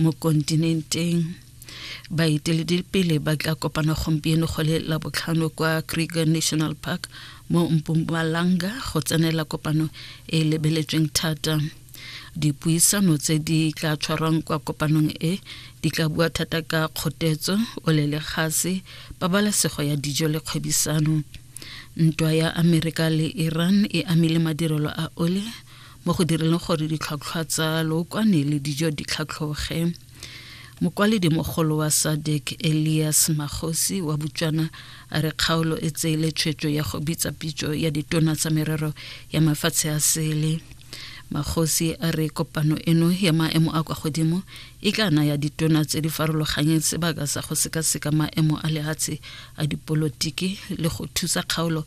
mo kontinenteng baeteledipele ba tla kopana gompieno go le labotlhano kwa kruger national park mo mpumalanga go tsenela kopano e e lebeletsweng thata dipuisano tse di tla tshwarwang kwa kopanong e di tla bua thata ka kgotetso olelegashe pabalesego ya dijo le kgwebisano ntwa ya amerika le iran e amile madirelo a ole mo go direleng gore ditlhwatlhwa tsa lookwane le dijo di tlhatlhoge mokwaledi mogolo wa sadek elias magosi wa botswana a re kgaolo e tseele tshwetso ya go bitsa pitso ya ditona tsa merero ya mafatshe a sele magosi a re kopano eno ya maemo a kwa godimo e tla naya ditona tse di farologanyeng sebaka sa go sekaseka maemo a lehatshe a dipolotiki le go thusa kgaolo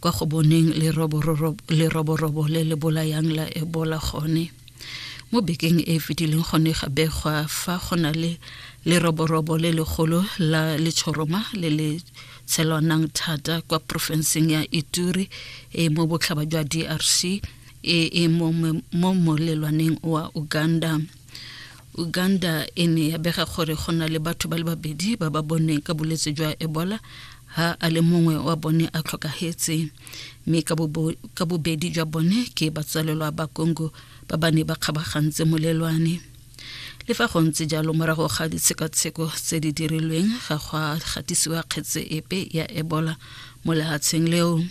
kwa go boneng leroborobo le le bolayang la ebola gone mo bekeng e fetileng gone ga begwa fa go na le leroborobo le legolo la letshoroma le le tshelwanang thata kwa porofenseng ya ituri e mo botlhaba jwa drc e e mo molelwaneng wa uganda uganda e ne ya bega gore go na le batho ba le babedi ba ba boneng ka bolwetse jwa ebola ha a le mongwe wa bone a tlhokagetse mme ka bobedi jwa bone ke batsalelwa ba congo ba ba ne ba kgabagantse molelwane le fa go ntse jalo morago ga ditshekatsheko tse di dirilweng ga go a gatisiwa kgetse epe ya ebola mo lehatsheng leo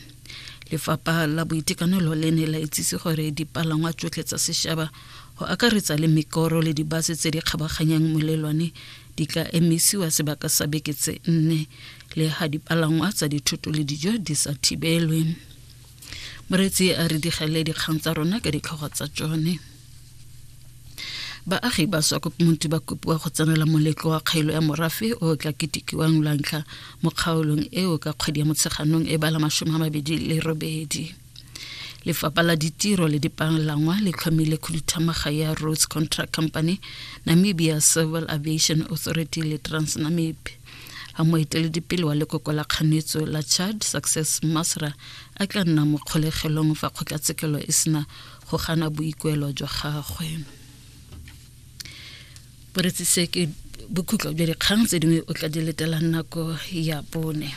lefapha la boitekanelo le ne la itsise gore dipalangwa tsotlhe tsa sešaba go akaretsa le mekoro le dibase tse di kgabaganyang molelwane di ka emisiwa sebaka sa beke tse nne le ga dipalangwa tsa dithoto le dijo di sa thibelwe moretsi a re digele dikgang tsa rona ka ditlhogo tsa tsone baagi ba swa kopomonti ba kopiwa go tsenela moletlo wa kgaelo ya morafe o tla ketikiwang lwantlha mo kgaolong eo ka kgwedi ya motsheganong e bala masome a mabedi le robedi lefapha la ditiro le dipalangwa le tlhomile khuduthamaga ya roads contract company namibia civil aviation authority le transnamib ga moeteledipele wa lekoko la kganetso la chad success masra a tla nna mo kgolegelong fa kgotlatshekelo e sena go gana boikuelo jwa gagwe boretsise ke bokhutlo jwa dikgang tse dingwe o tla di letelang nako ya bone